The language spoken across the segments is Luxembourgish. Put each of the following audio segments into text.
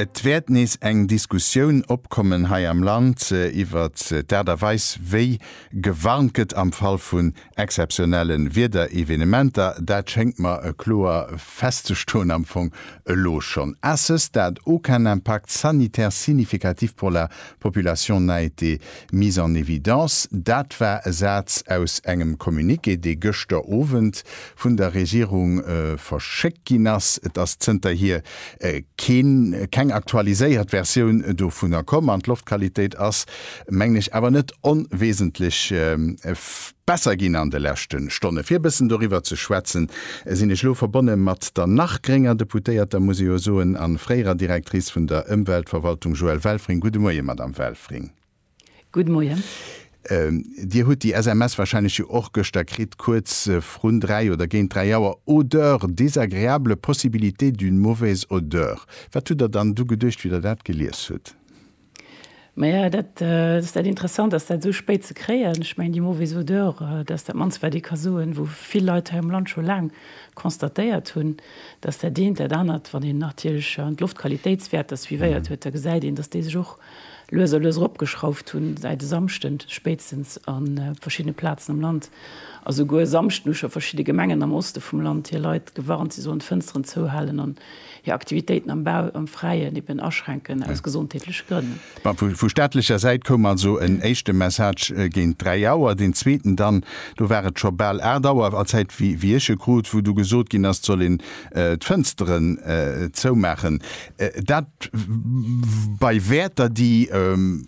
Et wäert nees eng Diskussioun opkommen hei am Land iwwert d'Aart a Weis wéi gewarnt gëtt am Fall vun exzeptionelle Wiederevenementer. Dat schéngt mer kloer festzestoen, am Fong elo schonn. A ce stade aucun impact sanitaire significatif pour la Population n'a été mise en évidence, dat war e Saz aus engem Communiqué, dee gëschter Owend vun der Regierung verschéckt ginn ass. Et ass zënterhier keen, keng aktualiséiert Versioun dovunner komm. An d'Loftqualitéit ass, mengen ech, awer net onwesentlech Besser ginn an de leschte Stonne. Fir e bëssen doriwwer ze schwätzen, sinn ech elo verbonne mat der nach grénger Deputéierter, muss ee jo soen, a fréierer Directrice vun der Ëmweltverwaltung, Joëlle Welfring. Gudde Moie, Madamm Welfring. Gudde Moie. Dir hutt déi SMS warscheinlech jo och gëschter kritt, kuerz vrun dräi oder géint dräi Auer, Odeur désagréable, possibilité d'une mauvaise odeur. Wat hutt Der dann du geduecht, wéi Der dat gelies hutt? Maja, dat ass dat interessant, dass dat esou spéit ze kréien. Ech mengen déi mauvaise odeur, dat ass dat mannst wat ee ka soen, wou vill Leit hei am Land scho laang constatéiert hunn, dass dat eent dat anert, wann een natierlech d'Loftqualitéitswäerter suivéiert huet, da gesäit een, dass déi sech och lues a lues eropgeschrauft hunn, säit e Samschden spéitstens a verschiddene Plazen am Land. A souguer e Samschden hu scho verschidde Gemengen am Oste vum Land hir Leit gewarnt, si sollen d'Fënsteren zouhalen an hir Aktivitéiten am Bau am Fräien eben aschränken aus gesondheetleche Grënn. Bon, vu staatlecher Säit koum also en éischte Message géint dräi Auer, deen zweeten dann, do war et scho bal aacht Auer, a Zäit wéi ech e krut, wou du gesot ginn ass, et soll een d'Fënsteren zoumaachen. Dat bei Wäerter, déi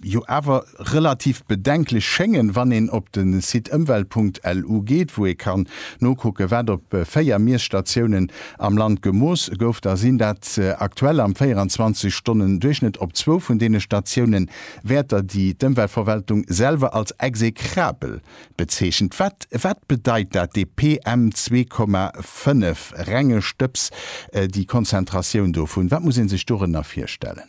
jo awer relativ bedenklech schéngen, wann een op de Site ëmwelt punkt lu geet, wou ee kann nokucken, wat op véier Miesstatiounen Am Land gemooss gouf, da sinn dat aktuell am 24 Stonnen Duerchschnëtt op zwou vun deene Statiounen, Wäerter déi d'Ëmweltverwaltung selwer als execrabel bezeechent. Wat wat bedeit dat, dee PM 2,5, renge Stëbs, déi Konzentratioun dovun, wat muss ee sech dorënner virstellen?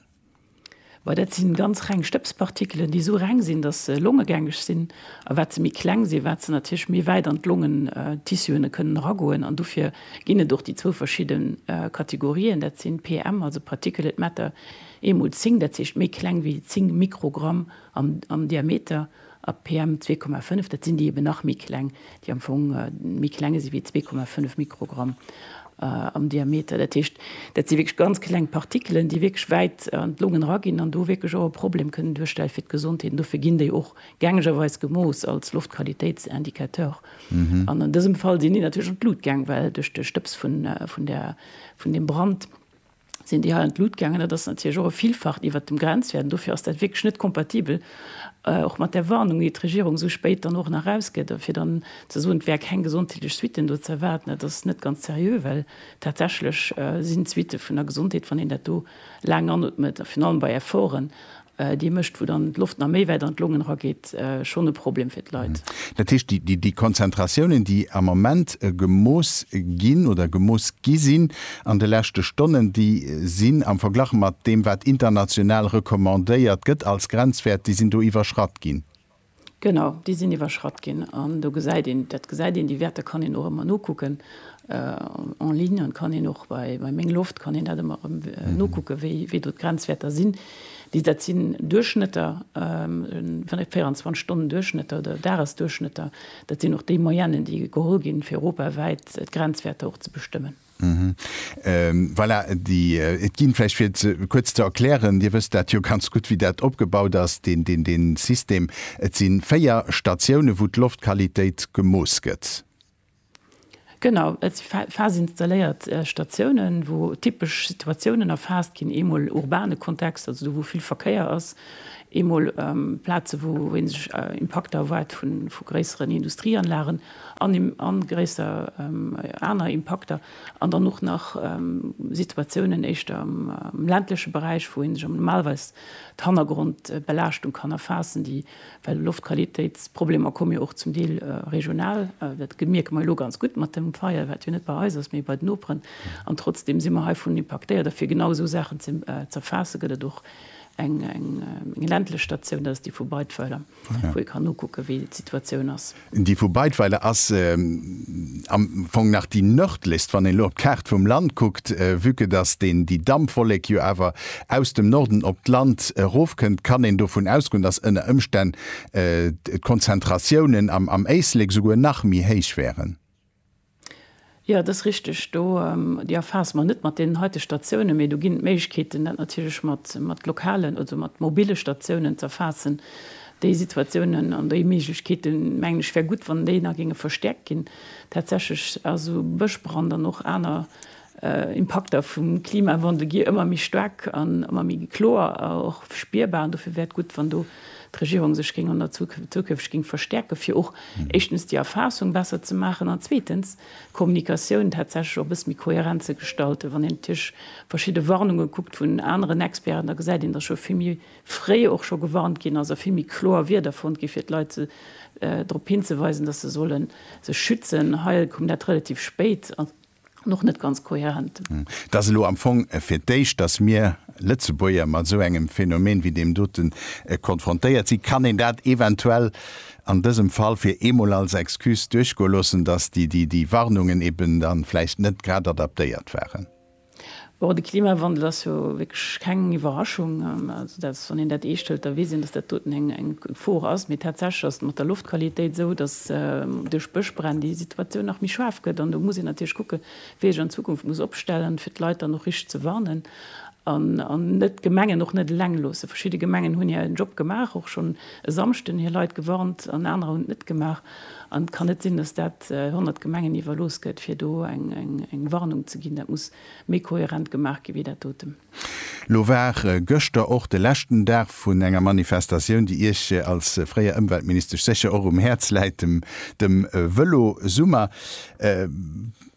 Well dat si ganz reng Stëbspartikelen, déi esou reng sinn, datt se longegängeg sinn. A wat se méi kleng sinn, wat se natierlech méi wäit an d'Longentissuene kënnen eragoen. An dofir ginn et och déi zwou verschidde Kategorien, dat si PM, also Particulate Matter, eemol 10, dat heescht méi kleng wéi 10 Mikrogramm am Diameter, A PM 2,5, dat sinn déi eben nach méi kleng, déi am Fong méi klenge si wéi 2,5 Mikrogramm am Diameter. Dat heescht, dat si wierklech ganz kleng Partikelen, déi wierklech wäit an d'Longen eraginn an do wierklech och e Problem kënnen duerstelle fir d'Gesondheet. An dofir ginn déi och gängegerweis gemooss als Loftqualitéitsindicateur. An an dësem Fall sinn déi natierlech an d'Blut gaang, well duerch de Stëbs vun deem Brand, sinn déi hei an d'Lut gaangen. Dat ass natierlech och e Vielfacht iwwert dem Grenzwäert an dofir ass dat wierklech net kompatibel, och mat där Warnung, déi d'Regierung esou spéit dann och nach erausgëtt, fir dann ze soen, et wäre keng gesondheetlech Suitten do ze erwaarden. Dat ass net ganz seriö, well tatsächlech sinn d'Suitte vun der Gesondheet, wann een dat do laang anootmet, virun allem bei Efforten, dee mécht, wou dann d'Loft nach méi wäit an d'Longen erageet, schonn e Problem fir d'Leit. Dat heescht, déi Konzentratiounen, déi am Ament gemooss ginn oder gemooss gi sinn an de leschte Stonnen, déi sinn am Verglach mat deem, wat international recommandéiert gëtt als Grenzwäert, déi sinn do iwwerschratt ginn? Genau, déi sinn iwwerschratt ginn. An do gesäit een, dat gesäit een, déi Wäerter kann een och ëmmer nokucken en ligne an kann een och bei Meng Loft kann een dat ëmmer erëm nokucken, wéi do d'Grenzwäerter sinn. Déi, dat sinn Duerchschnëtter, 24 Stonnen Duerchschnëtter oder Dagesduerchschnëtter. Dat sinn och déi Moyennë, déi geholl ginn, fir europawäit d'Grenzwäerter och ze bestëmmen. Mhm. Ähm, voilà, déi, äh, et ginn vläicht fir ze, kuerz ze erklären, Dir wësst dat jo ganz gutt, wéi dat opgebaut ass, deen, deen, deen System. Et si véier Statiounen, wou d'Loftqualitéit gemooss gëtt. Genau, et si phaseinstalléiert Statiounen, wou typesch Situatiounen erfaasst ginn, eemol urbane Kontext, also do, wou vill Verkéier ass, eemol, ähm, Plaze, wou, wou ee sech Impakter erwaart vu, vu gréisseren Industrieanlagen. a gréisser aner Impakter, an dann och nach Situatiounen éischter am ländleche Beräich, wou ee sech am normalerweis d'Hannergrondbelaaschtung kann erfaassen, déi, well Loftqualitéitsproblemer komme jo och zum Deel regional, dat mierke mer jo elo ganz gutt mat dem Feier, wat jo net bei eis ass, mee bei den Noperen, an trotzdeem si mer heivun impaktéiert. A fir genau esou Saachen z'erfaassen, gëtt et och eng ländlech Statioun, dat ass déi vu Beidweiler. wou ee kann nokucke wéi d'Situatioun ass. Déi vu Beidweiler ass am Fong nach déi nërdlechst, wann een elo op d'Kaart vum Land kuckt, vue que dass deen déi Dampwollek jo awer aus dem Norden op d'Land erofkënnt, kann een dovun ausgoen, dass ënner Ëmstänn d'Konzentratiounen am Éislek souguer nach méi héich wären. Jo, et ass richteg, do, déi erfaasse mer net mat deenen heite Statiounen, mee do ginn et Méiglechkeeten, dat natierlech mat lokalen, also mat mobile Statiounen ze erfaassen. Déi Situatiounen an déi Méiglechkeeten, mengen ech, wär gutt, wann déi nach géinge verstäerkt ginn. Tatsächlech, also Bëschbrand an och aner Impakter vum Klimawandel gi ëmmer méi staark an ëmmer méi kloer a och spierbar. An dofir wär et gutt, wann do d'Regierung sech géing an der Zukunft géing verstäerken, fir och éischtens déi Erfaassung besser ze maachen an zweetens d'Kommunikatioun tatsächlech och e bësse méi kohärent ze gestalten. Wann een natierlech verschidde Warnunge kuckt vun aneren Experten, da gesäit een, datt scho vill méi fréi och scho gewarnt ginn ass a vill méi kloer Wierder fonnt ginn, fir d'Leit drop hinzeweisen, datt se solle sech schützen. Hei koum dat relativ spéit. an och net ganz kohärent. Et ass elo am Fong fir d'éischt, datt mir Lëtzebuerger mat esou engem Phänomen wéi deem doten konfrontéiert sinn. Kann een dat eventuell an dësem Fall fir eemol als Excuse duerchgoe loossen, datt déi Warnungen eben da vläicht net grad adaptéiert waren? Bon, de Klimawandel ass jo wierklech keng Iwwerraschung. Also dat, wann een dat eescht hëlt, da weess een, datt dat doten eng Gefor ass. Mee tatsächlech ass et mat der Loftqualitéit esou, datt duerch Bëschbränn déi Situatioun nach méi schaarf gëtt. An do muss een natierlech kucken, wéi ee sech an Zukunft muss opstellen, fir d'Leit dann och richteg ze warnen an net d'Gemengen och net eleng loossen. Verschidde Gemengen hunn hiren Job gemaach, och schonn e Samschden hir Leit gewarnt, an anerer hunn et net gemaach. An et kann net sinn, datt dat 100 Gemengen iwwerlooss gëtt, fir do eng Warnung ze ginn. Dat muss méi kohärent gemaach gi wéi dat doten. Lo war gëschter och de leschten Dag vun enger Manifestatioun, déi Iech als fréier Ëmweltministesch sécher och um Häerz läit, dem Vëlosummer.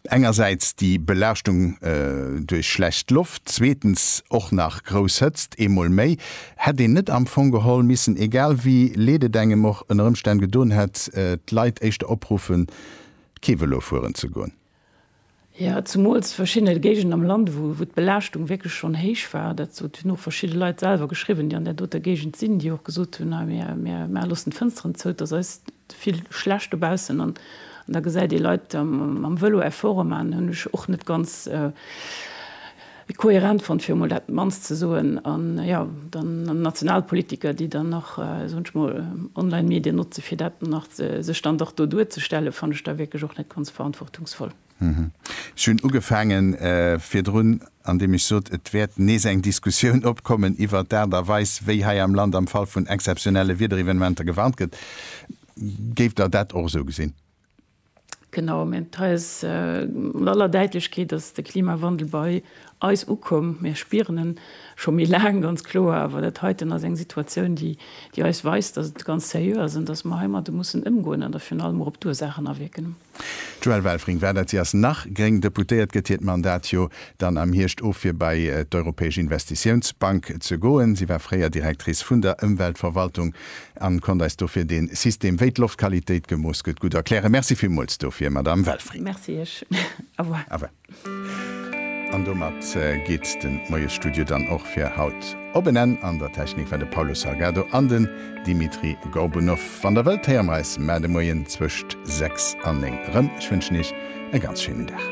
Engersäits déi Belaaschtung duerch schlecht Loft, zweetens och nach grouss Hëtzt, eemol méi. Hätt een net am Fong geholl missen, egal wéi leed et engem och ënner Ëmstänn gedoen hätt, d'Leit éischter opruffen, kee Vëlo fueren ze goen? Jo, zumools verschidde Géigenden am Land, wou wou d'Belaaschtung wierklech schonn héich war. Dat sot hunn och verschidde Leit selwer geschriwwen, déi an där doter Géigend sinn, déi och gesot hunn, hei mir mir maache loossen d'Fënsteren zou, et ass eis vill schlecht dobaussen. An da gesäit ee Leit am am Vëlo Efforte maachen, hunn ech och net ganz. Wéi kohärent fonnt, fir emol dat mannst ze soen, an jo, dann national Politiker, déi dann nach, soen ech mol, Online-Medien notze fir dat dann nach ze, sech dann dach do duerzestellen, fannt ech da wierklech och net ganz verantwortungsvoll. Ech hunn ugefaange virdrun, andeem ech sot, et wäert nees eng Diskussioun opkommen iwwert d'Aart a Weis, wéi hei am Land am Fall vun exzeptionelle Wiederevenementer gewarnt gëtt. Géift Der dat och esou gesinn? Genau, mä et heist mat aller Däitlechkeet, dass de Klimawandel bei eis ukomm. Mir spieren en scho méi laang, ganz kloer, awer dat heiten ass eng Situatioun, déi eis weist, dass et ganz seriö ass an dass mer heimadde mussen ëmgoen an da virun allem och op d'Ursaachen awierken. D'Joëlle Welfring, war dat? Si ass nach gréng Deputéiert, gëtt hiert Mandat jo dann am Hierscht of, fir bei d'Europäesch Investitiounsbank ze goen. Si war fréier Directrice vun der Ëmweltverwaltung an konnt eis dofir den System wéi d'Loftqualitéit gemooss gëtt gutt erklären. Merci villmools dofir Madame Welfring. Merci iech. Au revoir. Au revoir. An domat geet den Moiesstudio dann och fir haut op en Enn. An der Technik war de Paulo Salgado an den Dimitri Gorbunov. Wann der wëllt héiere mer eis maer de Moien zwëscht 6 an 9 rëm. Ech wënschen iech e ganz schéinen Dag.